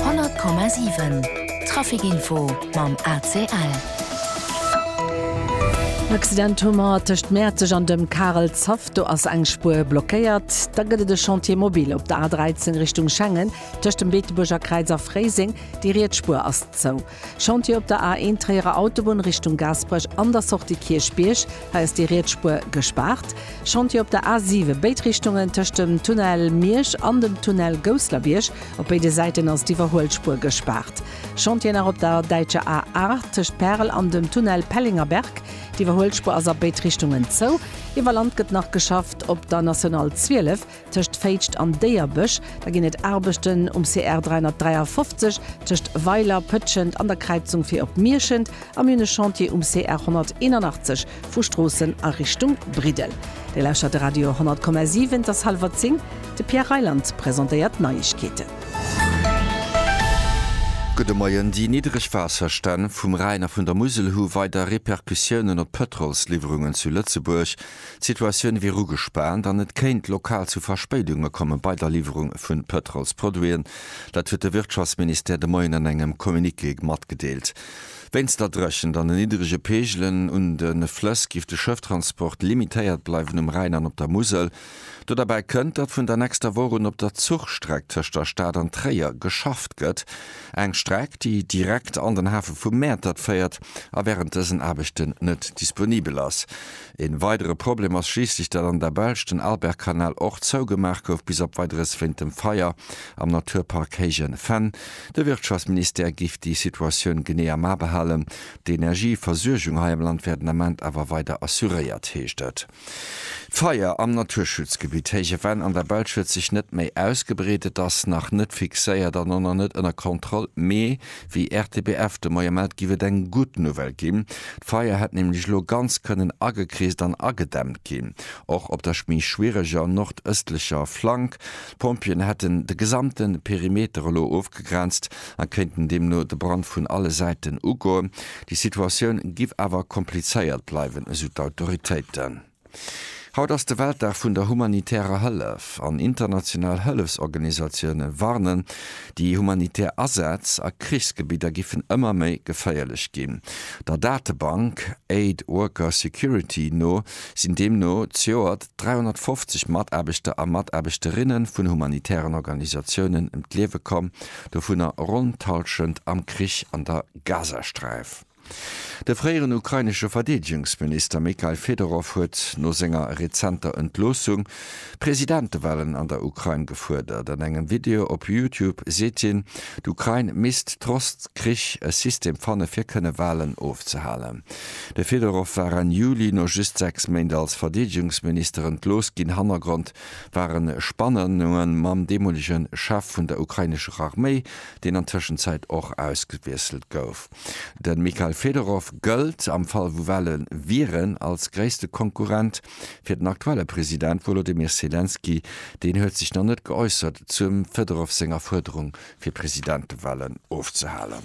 100,7 Trafic-Info mam ACL. Accident hu mer tëscht Mäerzeg an dem Karel Zopf. Do ass eng Spuer blockéiert. Da gëtt et e Chantier mobile op der A13 Richtung Schengen, tëscht dem Beetebuerger Kräiz a Fréiseng. Déi riets Spuer ass zou. Chantier op der A1 Tréierer Autobunn Richtung Gaasperech an der Sortie Kierchbierg, hei ass déi riets Spuer gespaart. Chantier op der A7 béid Richtungen tëscht dem Tunnel Miersch an dem Tunnel Gousslerbierg, op béide Säiten ass d'Iwwerhuelspuer gespaart. Chantier nach op der Däitscher A8 tëscht Pärel an dem Tunnel Pellingerberg, d'Iwwerhuelspuer ass a béid Richtungen zou. Iwwer Land gëtt nach geschafft op der National 12. Tëscht Féitscht an Déierbësch, da ginn et Aarbechten um CR 353, tëscht Weiler, Pëtschent an der Kräizung fir op Mierschent a mir hunn e Chantier um CR 181 vu Stroossen a Richtung Briddel. Dir lauschtert de Radio 100,7, et ass hallwer zéng, de Pierre Reyland presentéiert d'Neiegkeeten. Gudde Moien, Déi niddreg Waasserstänn vum Rhäin a vun der Musel hu weider Repercussiounen op d'Pëtrolsliwwerungen zu Lëtzebuerg. D'Situatioun wier ugespaant an et kéint lokal zu Verspéidunge komme bei der Liwwerung vu Pëtrolsproduiten. Dat huet de Wirtschaftsministère de Moien an engem Communiqué matgedeelt. Wéinst der Dréchent an den niddrege Peegelen un de Flëss giff de Schëfftransport limitéiert bleiwen um Rhäin an op der Musel. Do derbäi kënnt, datt vun der nächster Woch un op der Zuchstreck tëscht der Stad an Tréier geschafft gëtt. Eng Streck, déi direkt an den Hafe vu Mäertert féiert a wärend dësen Aarbechten net disponibel ass. Een weidere Problem ass schliisslech, dat an der Belsch den Albertkanal och zougemaach gouf bis op Weideres wéint dem Feier am Naturpark Héijen Fenn. De Wirtschaftsministère giff déi Situatioun genee am A behalen. D'Energieversuergung hei am Land wär den Ament awer weider assuréiert, heescht et. D'Feier am Naturschutzgebitt Héije Venn an der Belsch huet sech net méi ausgebreet. Et ass nach net fixéiert an och nach net ënner Kontroll, mee Wéi RTBF de Moie mellt, giff et eng gutt Nouvelle ginn. D'Feier hätt nämlech elo ganz kënnen agekreest an agedämmt ginn, och op der méi schwiereger nordëstlecher Flank. D'Pompjeeën hätten de gesamte Perimeter elo ofgegrenzt a kéinten deemno de Brand vun alle Säiten ugoen. Déi Situatioun giff awer komplizéiert bleiwen, esou d'Autoritéiten. Haut ass de Weltdag vun der humanitärer Hëllef an international Hëllefsorganisatioune warnen, déi humanitär Asätz a Krichsgebidder giffen ëmmer méi geféierlech ginn. Der Datebank Aid Worker Security no sinn deemno zejoert 350 Mataarbechter a Mataarbechterinnen vun humanitären Organisatiounen ëm d'Liewe komm, dovunner ronn d'Hallschent am Krich an der Gazasträif. De fréieren ukrainesche Verdeedegungsminister Mykhail Fedorow huet no senger rezenter Entloossung Presidentewalen an der Ukrain gefuerdert. An engem Video op Youtube seet hien, d'Ukrain misst trotz Krich e System fanne fir kënne Walen ofzehalen. De Fedorow war Enn Juli no just sechs Méint als Verdeedegungsminister entlooss ginn. Hannergrond ware Spannunge mam deemolege Chef vun der ukrainescher Arméi, deen an Tëschenzäit och ausgewiesselt gouf. De Mikhail Fedorov gëllt, am Fall wou Wale wieren, als gréisste Konkurrent fir den aktuelle President Wolodymyr Selenskyj. Deen huet sech nach net geäussert zum Fedorov senger Fuerderung fir Presidentewalen ofzehalen.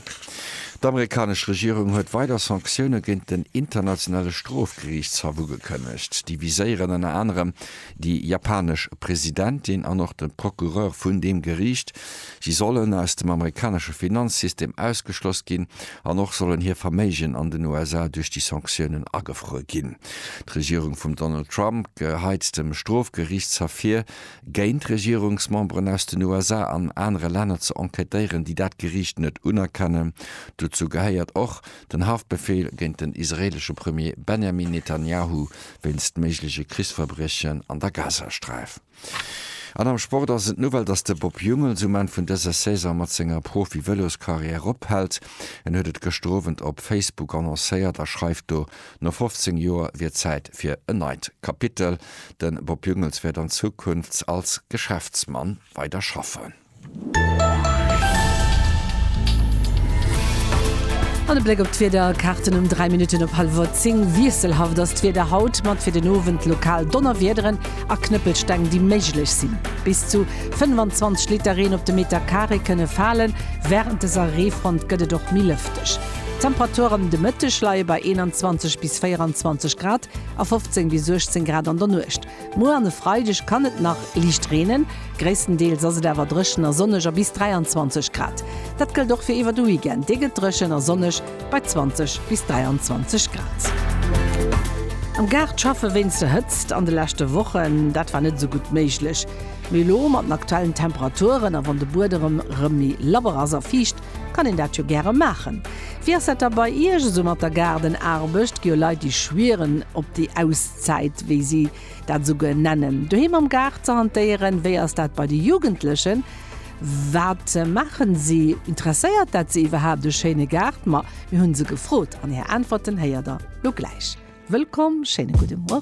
D'amerikanesch Regierung huet weider Sanktioune géint den Internationale Strofgeriichtshaff ugekënnegt. Déi viséieren ënner anerem déi japanesch Presidentin an och de Procureur vun deem Geriicht. Si sollen aus dem amerikanesche Finanzsystem ausgeschloss ginn an och sollen hir Verméigen an den USA duerch déi Sanktiounen agefruer ginn. D'Regierung vum Donald Trump geheit dem Strofgeriichtshaff vir, géint Regierungsmemberen aus den USA an anere Länner ze enquêtéieren, déi dat Geriicht net unerkennen. Dozou gehéiert och den Haftbefeel géint den israeelesche Premier Benjamin Netanjahu wéinst méigleche Krichsverbriechen an der Gazasträif. An am Sport ass et d'Nouvelle, dass de Bob Jungels um Enn vun dëser Saison mat senger Profi-Vëloskarriär ophält. En huet et gëschter Owend op Facebook annoncéiert a schreift do, no 15 Joer wier et Zäit fir en neit Kapitel. De Bob Jungels wäert an Zukunft als Geschäftsmann weider schaffen. An e Bléck op d'Wiederkaarten um 3 Minutten op hallwer 10. Wiesselhaft ass d'Wieder haut, mat fir den Owend lokal Donnerwiederen a Knëppelsteng, déi méiglech sinn. Bis zu 25 Liter Reen op de Meter Carré kënne falen. Wärend dëser Reefront gëtt et och méi lëfteg. D'Temperature de Mëtteg leie bei 21 bis 24 Grad a 15 bis 18 Grad an der Nuecht. Muer an e Freideg kann et nach liicht reenen, gréisstendeels ass et awer dréchen a sonneg a bis 23 Grad. Dat gëllt och fir iwwer de Weekend, dee gëtt dréchen a sonneg bei 20 bis 23 Grad. Am Gaart schaffe wéinst der Hëtzt an de leschte Wochen, dat war net esou gutt méiglech. Mee elo mat den aktuellen Temperaturen a wann de Buedem rëm méi labber ass a fiicht, kann een dat jo gäre maachen. Wéi ass dat da bei Iech esou mat der Gaardenaarbecht? Gi jo Leit déi schwieren op déi aus? Zäit, wéi si dat esou genennen, doheem am Gaart ze hantéieren? Wéi ass dat bei de Jugendlechen? Wat maachen si? Interesséiert dat se iwwerhaapt, e schéine Gaart? Ma mir hunn se gefrot an hir Äntwerten héiert der lo gläich. Wëllkomm, schéine gudde Mueren.